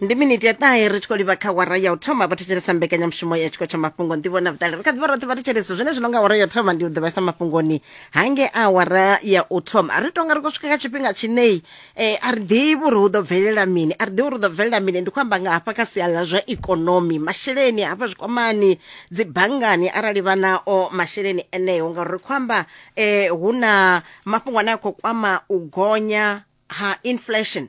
ndi miniti ya ṱahe ri tshi khou livha kha wara ya u thoma vha thetshelesa mbekanyamushumo ya tshiko tsha mafhungo nḓivho na vhuṱali ri kha ḓivha roṱhe vha thetshelesa zwine zwino nga wara ya u thoma ndi u ḓivhesa mafhungoni hange a wara ya u thoma ri tonga ri khou swika kha tshifhinga tshinei eh, a ri ḓivhi uri hu ḓo bvelela mini a ri ḓivhi uri hu ḓo bvelela mini ndi khou amba nga hafha kha sia ḽa zwa ikonomi masheleni hafha zwikwamani dzi banngani arali vha nao masheleni eneo ngauri ri khou amba eh, hu na mafhungo ane a khou kwama u gonya ha inflation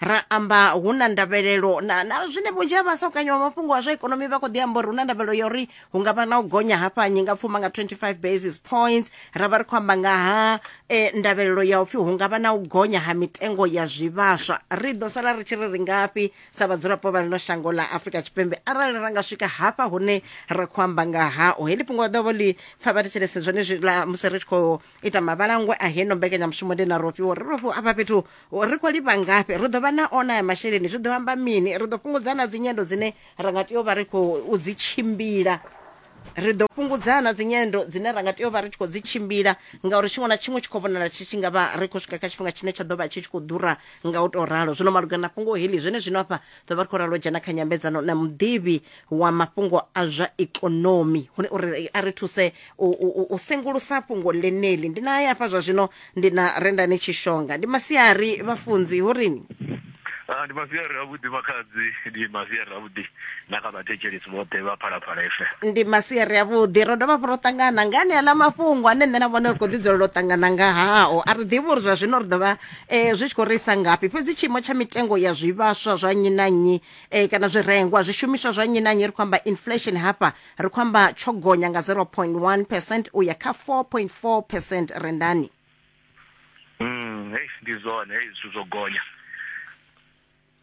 ra amba hu na ndavhelelo na, na zwine vhunzhi ha vhasakanyi wa mafhungo a zwa ikonomi vha khou ḓi amba uri hu na ndavhelelo ya uri hu nga vha na u gonya hafha nyi nga pfuma nga 25 basis points ra vha ri khou amba nga ha eh, ndavhelelo ya upfhi hu nga vha na u gonya ha mitengo ya zwivhaswa ri ḓo sala ri tshi ri ri ngafhi sa vhadzulapo vha ḽino shango ḽa afurika tshipembe arali ra nga swika hafha hune ra khou amba nga hao heḽi fhungo ḓovho ḽi pfa vha thetshelese zwone zwi la musi ri tshi khou ita mavhalangwe a heno mbekanyamushumo ndi na rofhiwa uri rofhiwa afha fhethu ri khou livha ngafhi ri ḓo vha na ona ya masheleni zwi ḓo amba mini ri ḓo fhungudza na dzinyendo dzine ra nga tea u vha ri khou dzi tshimbila ri ḓo fhungudza na dzinyendo dzine ra nga tea u vha ri tshi khou dzi tshimbila ngauri tshiṅwe na tshiṅwe tshi khou vhonala tshi tshi nga vha ri khou swika kha tshifhinga tshine tsha ḓo vha tshi tshi khou ḓura nga u tou ralo zwino malugana na fhungo heḽi zwene zwino afha ḓo vha ri khou ralo dzhena kha nyambedzano na muḓivhi wa mafhungo a zwa ikonomi hune uri a ri thuse u, u, u sengulusa fhungo ḽeneli ndi na hafha zwa zwino ndi na rendani tshishonga ndi masiari vhafunzi hu rini Ah, ndi masiari avhuḓi makhadzi ndi masiari avhuḓi na kha vhathetshelesi vhoṱhe vha phalaphala efe ndi masiari avhuḓi ro dovha hafhu ro ṱangana nga ane aḽa mafhungo ane nṋe na vhone ri khou ḓi dzulela u ṱangana nga hao a ri ḓivhi uri zwa zwino ri ḓo vha um zwi tshi khou ri isa ngafhi fhedzi tshiimo tsha mitengo ya zwivhaswa zwa nnyi na nnyi e, kana zwirengwa zwishumiswa zwa nnyi na nnyi ri khou amba inflation hafha ri khou amba tsho gonya nga 0.1 percent u ya kha 4.4 percent rendani mm, hey, ndi zwone hey, zwithu zwo gonya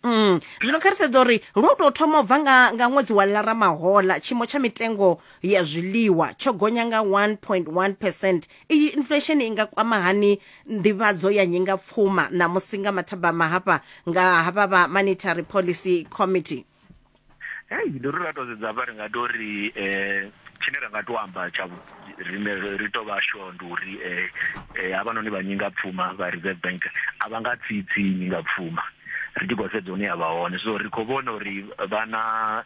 Mm. zwino kha ri sedza uri lwo tou thoma u bva nga, nga ṅwedzi wa lara mahola tshiimo tsha mitengo ya zwiḽiwa tsho gonya nga 1.1 percent Iyi inflesheni i nga kwama hani nḓivhadzo ya nyingapfuma ṋamusi nga mathabama hafha nga havha vha Monetary Policy Committee? Hei, ndi uri ra tou sedza hafha ri nga tou ri um tshine ra nga tou amba tsha rine ri tou vha sure ndi uri um havhanoni vha nyingapfuma vha Reserve Bank a vha nga tsitsi nyingapfuma ri tshi khou sedza hune ya vha hone. So ri khou vhona uri vha na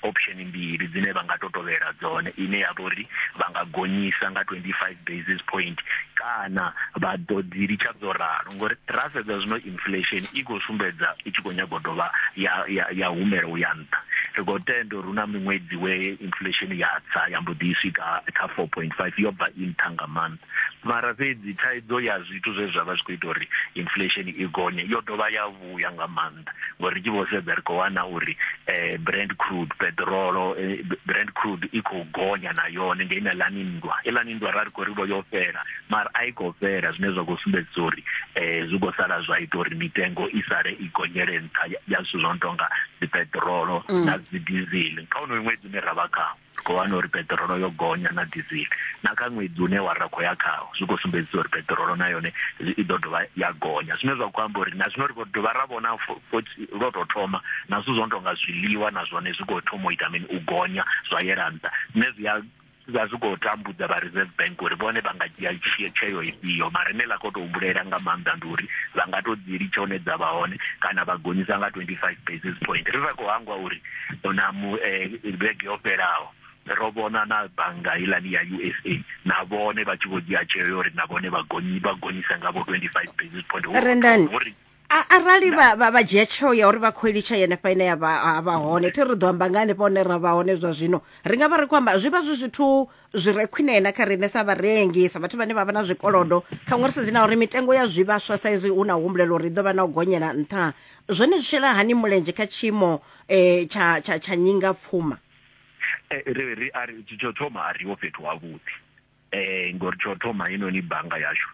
option mbili dzine vha nga to tovhela dzone ine ya vha uri vha nga gonyisa nga 25 basis point kana vha ḓo dzi litsha dzo ralo ngori ra sedza zwino inflation i khou sumbedza i tshi khou nyago dovha ya ya ya humela u ya nṱha ri khou tenda uri hu na miṅwedzi we inflation ya tsa ya mbo ḓi swika kha 4.5 yo bva i nṱha nga maanḓa mara fhedzi thaidzo ya zwithu zwe zwa vha zwi khou ita uri inflation i gonye yo dovha ya vhuya nga maanḓa ngori ri tshi vho sedza ri khou wana uri um brand crude peṱirolo eh, brand crude i khou gonya na yone nge ina lani nndwa ilani nndwa ra ri khou ri vho yo fhela mara a i khou fhela zwine zwa khou sumbedzisa uri um zwi khou sala zwa ita uri mitengo i sale i gonyele nṱha ya zwithu zwo no tonga dzi peṱirolo mm. na dzi dizili kha unoyo ṅwedzi une ra vha khawo Ri khou wana uri peṱirolo yo gonya na dizili. Na kha ṅwedzi une wa ra khou ya khawo, zwi khou sumbedzisa uri peṱirolo na yone i ḓo dovha ya gonya. Zwine zwa khou amba uri na zwino ri khou dovha ra vhona futhi lwo tou thoma na zwithu zwo no tou nga zwiḽiwa na zwone zwi khou thoma u ita mini, u gonya zwa yela nṱha. Zwine zwi a vha zwi khou tambudza vha Reserve Bank uri vhone vha nga dzhia tsheo ifhio. Mara ine ḽa khou tou humbulela nga maanḓa ndi uri vha nga tou dzi litsha hune dza vha hone kana vha gonyisa nga 25 basis point. Ri sa khou hangwa uri na mu eh, vhege yo fhelaho ro vhona na bannga ilani ya usa na vhone vha tshi vho dzhia tsheo yo uri na vhone vha gonyi vha gonyisa nga vho 25 basis point Ho- Rendani. ho ri- A- arali vha vha- vha dzhia tsheo ya uri vha khou ilitsha yenefha ine ya vha ha vha hone thi ri ḓo amba nga hanefha hone ra vha hone zwa zwino ri nga vha ri khou amba zwi vha zwi zwithu zwi re khwine na kha riṋe sa vharengi sa vhathu vhane vha vha na zwikolodo khaṅwe ri sedzi na uri mitengo ya zwivhaswa sa izwi hu na humbulelo uri i ḓo vha na u gonyela nṱha zwone zwi shela hani mulenzhe kha tshiimo um eh, tsha, tsha, tsha nyinga pfuma eh, ri, ri, ari, tsho thoma a riho fhethu havhuḓi um ngori tsho thoma heinoni bannga yashu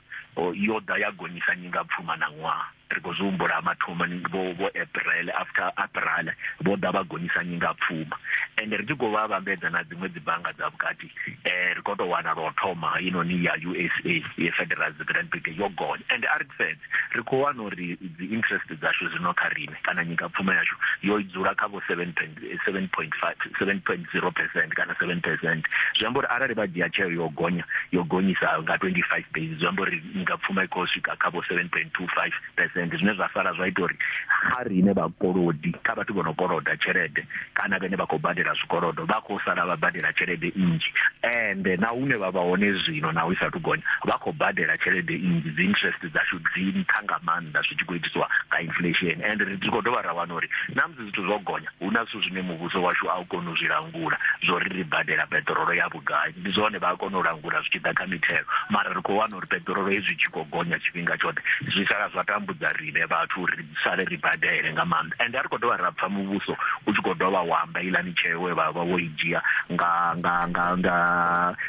yo ḓa ya gonyisa nyinga pfuma na ṅwaha Ri khou zwi humbula mathomoni vho vho April after April vho ḓa vha gonyisa nyinga pfuma ende ri tshi khou vha vhambedza na dziṅwe dzi bannga dza vhukati eh ri khou tou wana lwa u thoma i noni ya USA ye Federal Reserve Bank yo gonya ende a ri sedze ri khou wana uri dzi interest dzashu zwino kha riṋe kana nyinga pfuma yashu yo dzula kha vho 7 7.5 7.0 percent kana 7 percent zwi amba uri arali vha dzhia tsheo yo gonya yo gonyisa nga 25 basis zwi amba uri nga pfuma i khou swika kha vho 7.25 percent zwine zwa sala zwa ita uri kha riṋe vhakolodi kha vhathu vho no koloda tshelede kana vhene vha khou badela zwikolodo vha khou sala vha badela tshelede nnzhi ende na hune vha vha hone zwino na u sa thu gonya vha khou badela tshelede nnzhi dzi interest dzashu dzi nṱha nga maanḓa zwi tshi khou itiswa nga inflation ende ri khou dovha ra wana uri na zwithu zwo gonya, hu na zwithu zwine muvhuso washu a u koni u zwi langula, zwo ri ri badela peṱirolo ya vhugai. Ndi zwone vha a kona u langula zwi tshi ḓa kha mithelo, mara ri khou wana uri peṱirolo hezwi i tshi khou gonya tshifhinga tshoṱhe, zwi sala zwa tambudza riṋe vhathu uri ri sale ri badele nga maanḓa. Ende a ri khou dovha ra pfa muvhuso u tshi khou dovha wa amba iḽani tsheo we vha vha vho i dzhia nga nga nga nga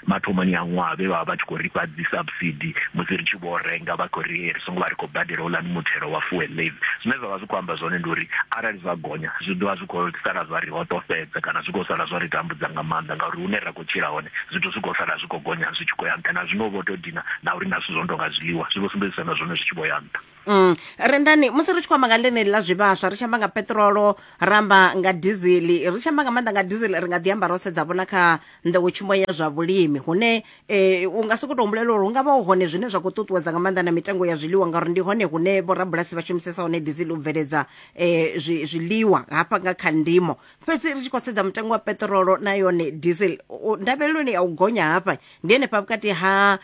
mathomoni a ṅwaha vhe vha vha vha tshi khou ri fha dzi subsidy musi ri tshi vho renga vha khou ri vho ngo vha ri khou badela houḽani muthelo wa fuel levy. Zwine zwa vha zwi khou amba zwone ndi uri arali zwa gonya zwi ḓo vha zwi khou sala zwa ri hoṱofhedza kana zwi khou sala zwa ri tambudza nga maanḓa ngauri hune ra khou tshila hone zwithu zwi khou sala zwi khou gonya zwi tshi khou ya nṱha. Na zwino vho tou dina na uri na zwithu zwo no tou nga zwiḽiwa zwi vho sumbedzisa na zwone zwi tshi vho ya nṱha. Rendani, musi ri tshi khou amba nga ḽeneli ḽa zwivhaswa ri tshi amba nga peṱirolo ra amba nga dizili ri tshi amba nga maanḓa nga dizili ri nga ḓi amba ro sedza vhona kha nḓowetshumo ya zwa vhulimi hune e, u nga sokou tou humbulela uri hu nga vha hu hone zwine zwa khou ṱuṱuwedza nga maanḓa na mitengo ya zwiḽiwa ngauri ndi hone hune vhorabulasi vha shumisesa hone dizili u bveledza um zwiḽiwa hafha nga kha ndimo fhedzi ri tshi khou sedza mutengo wa peṱirolo na yone diesel ndavheleloni ya u gonya hafha ndi henefha vhukati ha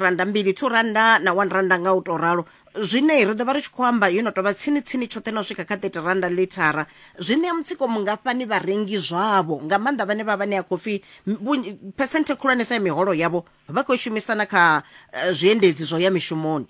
randa mbili two randa na one randa nga u tou ralo zwine ri ḓo vha ri tshi khou amba yo no tou vha tsini-tsini tshoṱhe na u swika kha 30 randa ḽithara zwi ṋea mutsiko mungafhani vharengi zwavho nga maanḓa vhane vha vha ṋea khou pfi phesenthe khulwanesa ya miholo yavho vha khou shumisa na kha eh, zwiendedzi zwo ya mishumoni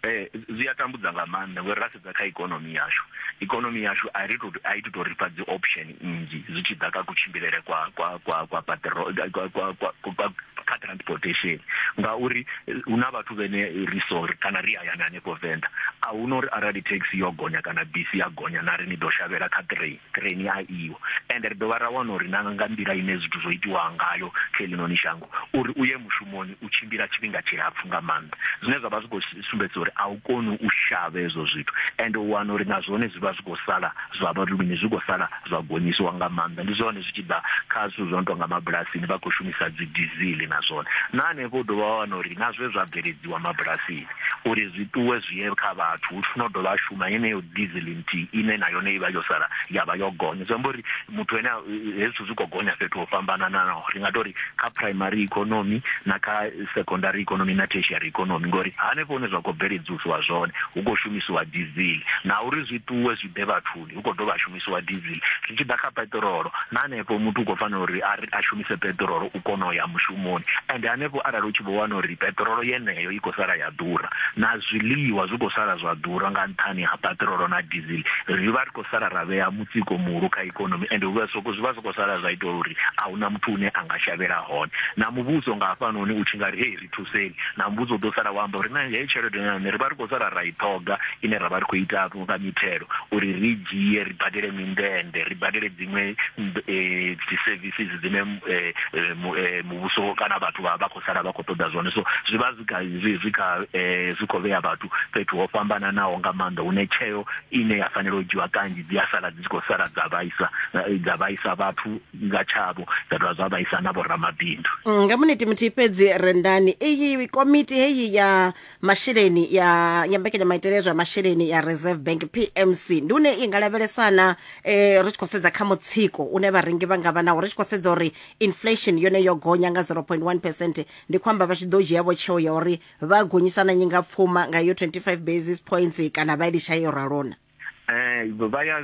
Eh, zwi a tambudza nga maanḓa ngori ra sedza kha ikonomi yashu ikonomi yashu a ri to a i to tou rifha dzi option nnzhi zwi tshi ḓa kha kutshimbilele kwa kwa kwa kwa paṱiro kwa kwa kwa kwa kha transportation ngauri eh, hu na vhathu vhene ri sori kana ri hayani hanefho venḓa a hu na uri arali taxi yo gonya kana bisi ya gonya na ri ni ḓo shavhela kha train train ya iwo ende ri dovha ra wana uri na nga nḓila ine zwithu zwo itiwa ngayo kha eḽinoni shango uri u ye mushumoni u tshimbila tshifhinga tshilapfu nga maanḓa zwine zwa vha zwi khou sumbedza uri a u koni u shavha hezwo zwithu ende u wana uri na zwone zwi vha zwi khou sala zwa vha luni zwi khou sala zwa gonyisiwa nga maanḓa ndi zwone zwi tshi ḓa kha zwithu zwo no tou nga mabulasini vha khou shumisa dzi dizili na zwone na hanefho u dovha wa wana uri na zwe zwa bveledziwa mabulasini uri zwi ṱuwe zwi ye kha vhathu hu funa u dovha a shuma yeneyo dizili nthihi ine na yone i vha yo sala ya vha yo gonya zwi amba uri muthu ene hezwi zwithu zwi khou gonya fhethu ho fhambananaho ri nga tori kha primary economy na kha secondary economy na tertiary economy ngori hanefho hune zwa khou bveledzisiwa zwone hu khou shumisiwa diesel na uri zwi ṱuwe zwi ḓe vhathuni hu khou dovha ha shumisiwa diesel zwi tshi ḓa kha peṱirolo na hanefho muthu u khou fanela uri a shumise peṱirolo u kona u ya mushumoni and hanefho arali u tshi vho wana uri peṱirolo yeneyo i khou sala ya ḓura na zwiḽiwa zwi khou sala zwa ḓura nga nṱhani ha peṱirolo na diesel ri vha ri sala ra vhea mutsiko muhulu kha ikonomi ende hu vha soko zwi vha soko sala zwa ita uri a huna muthu une a nga shavhela hone na muvhuso nga hafhanoni u tshi nga ri hei ri thuseni na muvhuso u ḓo sala wa amba uri na heyi tshelede na yone ri vha ri khou sala ra i ṱhoga ine ra vha ri khou ita nga mithelo uri ri dzhie ri badele mindende ri badele dziṅwe eh, dzi services dzine eh, eh, muvhuso kana vhathu vha vha khou sala vha khou ṱoḓa zwone so zwi vha zwi kha zwi kha zwi khou vhea vhathu fhethu ho fhambananaho nga maanḓa hune tsheo ine ya fanela u dzhiwa kanzhi dzi a sala dzi tshi khou sala dza vhaisa dza vhaisa vhathu nga tshavho dza dovha zwa vhaisa na vhoramabindu. Mm, nga muniti muthihi fhedzi rendani iyi komiti heyi ya masheleni ya ya mbekanyamaitele zwa masheleni ya reserve bank pmc ndi une i nga lavhelesana eh, ri tshi khou sedza kha mutsiko une vharengi vha nga vha nawo ri tshi khou sedza uri inflation yone yo gonya nga 0.1 percent ndi khou amba vha tshi ḓo dzhiavho tsheo ya uri vha gonyisa na nyingapfuma nga yo 25 basis points kana vha litsha yo ralona eh vha ya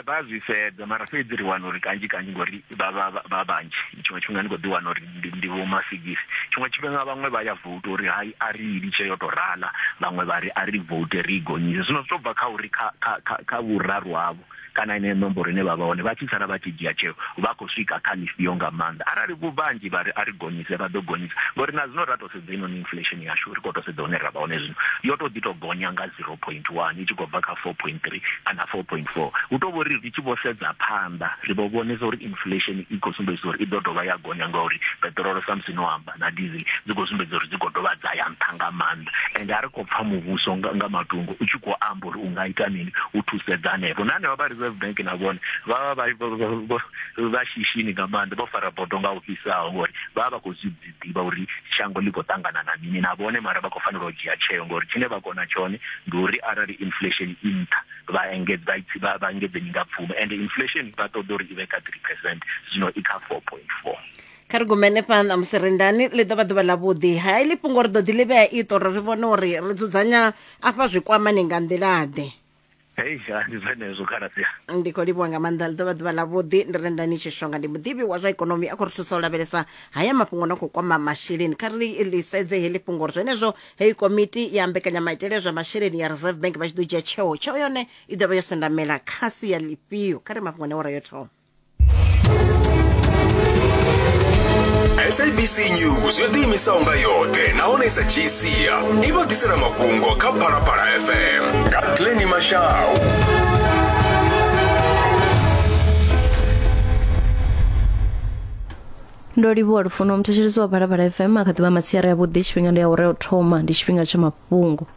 vha zwi sedza mara fhedzi ri wana uri kanzhi kanzhi ngori vha vha vha vhanzhi tshiṅwe tshifhinga ndi kho ḓi wana uri ndi vho masigisi tshiṅwe tshifhinga vhaṅwe vha ya vote uri hai a ri litshe yo to rala vhaṅwe vha ri a ri vote ri gonyise zwino zwi to bva kha uri kha kha kha vhuraru havho kana yeneyo nomboro ine vha vha hone vha tshi sala vha tshi dzhia tsheo vha khou swika kha ḽifhio nga maanḓa arali vhu vhanzhi vha ri a ri gonyise vha ḓo gonyisa ngori na zwino ra tou sedza inoni inflation yashu ri khou tou sedza hune ra vha hone zwino yo tou ḓi tou gonya nga 0.1 i tshi khou bva kha 4.3 kana 4.4 hu tou vho ri ri tshi vho sedza phanḓa ri vho vhonesa uri inflation i khou sumbedzisa uri i ḓo dovha ya gonya ngauri peṱirolo samusi no amba na dizi dzi khou sumbedza uri dzi khou dovha dza ya nṱha nga maanḓa ende a ri khou pfa muvhuso nga, nga matungo u tshi khou amba uri u nga ita mini u thusedza hanefho na hanevha vha reserve bank na vhone vha vha vha shishini nga maanḓa vho fara bodo nga u fhisaho ngori vha vha khou zwi ḓivha uri shango ḽi khou ṱangana na mini na vhone mara vha khou fanela u dzhia tsheo ngori tshine vha kona tshone ndi uri arali inflation i nṱha vha engedza vha engedze nyingapfumo ende inflation vha ṱoḓa uri i vhe kha 3 percent zwino i kha 4.4 kha ri gumene fhano musi rindani ḽi ḓo vha ḓuvha ḽavhuḓi ha iḽi fhungo ri ḓo ḓi ḽi vhea ito uri ri vhone uri ri dzudzanya afha zwikwamani nga nḓilaḓe hei ndi zwenezwo khaladzi ndi khou livhuwa nga maanḓa ḽi ḓovha ḓuvha ḽavhuḓi ndi rendani tshishonga ndi muḓivhi wa zwa ikonomi a khou ri thusa u lavhelesa haya mafhungo na khou kwama masheleni kha ri ḽi sedze heḽi fhungo uri zwenezwo heyi komiti ya mbekanyamaitele zwa masheleni ya reserve bank vha tshi ḓo dzhia tsheo tsheo yone i ḓovha yo sendamela kha sia ḽifhio kha ri mafhungo ne wa rayo thoma sabc news yo ḓiimisaho nga yoṱhe nahone sa gcia i vha ḓisela mafhungo kha phalaphala fm nga glenni mashau ndo livhuwa lufuno muthetshelesi wa phalaphala fm a kha ḓivha masiari avhuḓi tshifhinga ndi ya u re o thoma ndi tshifhinga tsha mafhungo